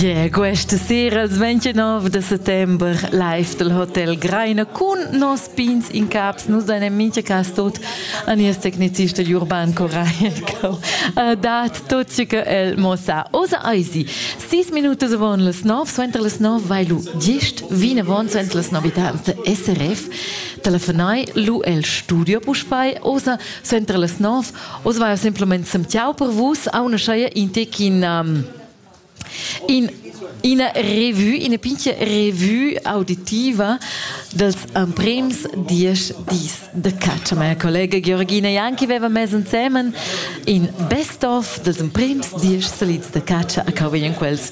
Yeah, questa sera il 29 de settembre live del Hotel Greiner con nos pins in caps nos deinem mincha cas tot a nies tecnicist del Urban Coraico uh, dat tot che el mossa osa eisi 6 minutos von les 9 suenter les 9 vai lu 10 vine von suenter les 9 habitantes SRF telefonai lu el studio puspei osa suenter les 9 Oz vaia simplamain semtiau per vus, auna scheia in tec in, um, in ina revue, ina pintia revue auditiva dels emprems diesch dis de caccia. Meine collega Georgina Janki aveva messo insieme in best of dels emprems diesch salids de caccia a cavo in quels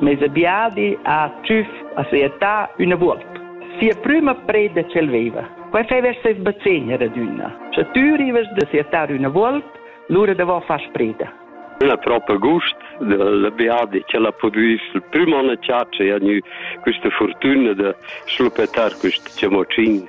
Meis biadi ha tschüf a sia età üna vuolp. Sia prüma preda ch'el veiva. Quai fev'er seis bazegn ad adünna. Scha tü rivast da siatar üna vuolp, lura davò fast preda. La propa gust dal biadi ch'el ha pudü il prüm on a chatscha e ha gnü quista furtüna da schluppetar quist chamotschin.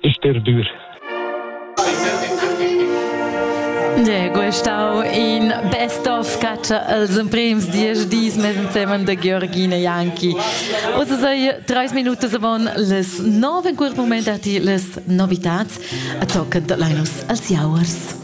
Sterdur. De, questau in best of catcher als emprems diesch dis mit Themen der Georgina Janki. Also sei drei Minuten davon les nove in quel moment arti les novitats a tocken de Linus als Jauers.